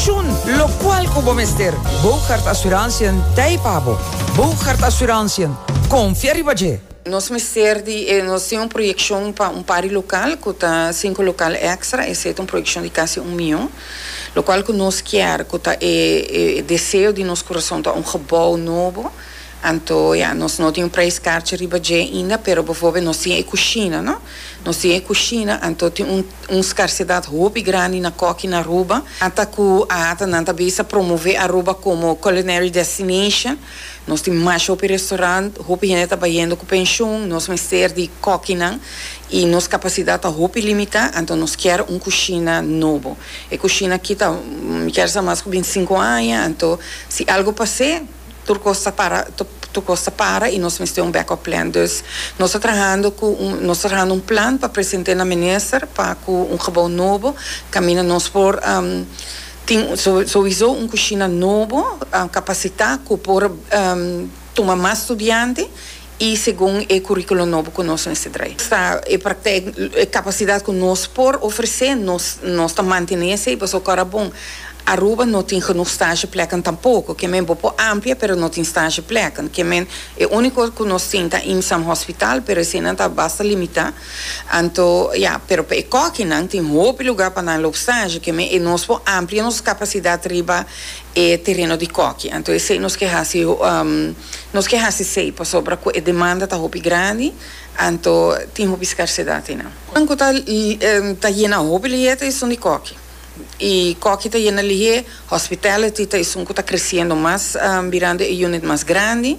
Shun locual cu bo mester. Bougaard Assurantiën t'ei pa bo. Bougaard Assurantiën, confia riba dje! Nos mester di e, nos tin un proyeccion pa un par di local cu ta cinco local extra, esey ta un proyeccion di casi un miyon, locual cu nos kier, cu ta e deseo di nos curason ta un gebou nobo, Anto ya, nos no tin un prijs karchi riba dje inda, pero befobia nos tin e kushina, no? Nos tin e kushina, anto tin un un skarsedat hopi grandi na kòki na Aruba. Ata ku a ata nan ta bisa promove Aruba komo culinary destination, nos tin masha hopi restaurant, hopi hende ta bayendo ku penshun, nos mester di kòkinan i nos kapasidat ta hopi limitá, anto nos kier un kushina nobo. E kushina aki ta mi kier sa mas ku binti sinku aña, anto si algu pas'é, Tur cos ta para tur cos ta para y nos mester un back up plan dus nos ta trahando cu un nos ta trahando un plan pa presente na minister pa cu un gebou nobo caminda nos por tin sowiso un cushina nobo capacita cu por tuma mas studiante. y segun e curriculum nobo cu nos mester trae. Esta e praktijk, e capacidad cu nos por ofrece, nos nos ta mantene esey pasobra ora bon Aruba no tin genoeg stageplekken tampoco, ke men bo por amplia pero no tin stageplekken, ke men e unico cu nos tin ta IMSAM hospital pero eseynan ta basta limita, anto ya, pero pa e kokinan tin hopi lugar pa nan loop stage, ke men e nos por amplia nos capacidad riba e tereno di koki anto esei nos ke hasi nos ke hasi sei pasobra ku e demanda ta hopi grandi anto tin hopi skersedat ei nan. Nan ku ta ta yena hopi lihé ta esun di koki i koki ta yena lihé hospitality ta esun ku ta kresiendo mas birando e unit mas grandi.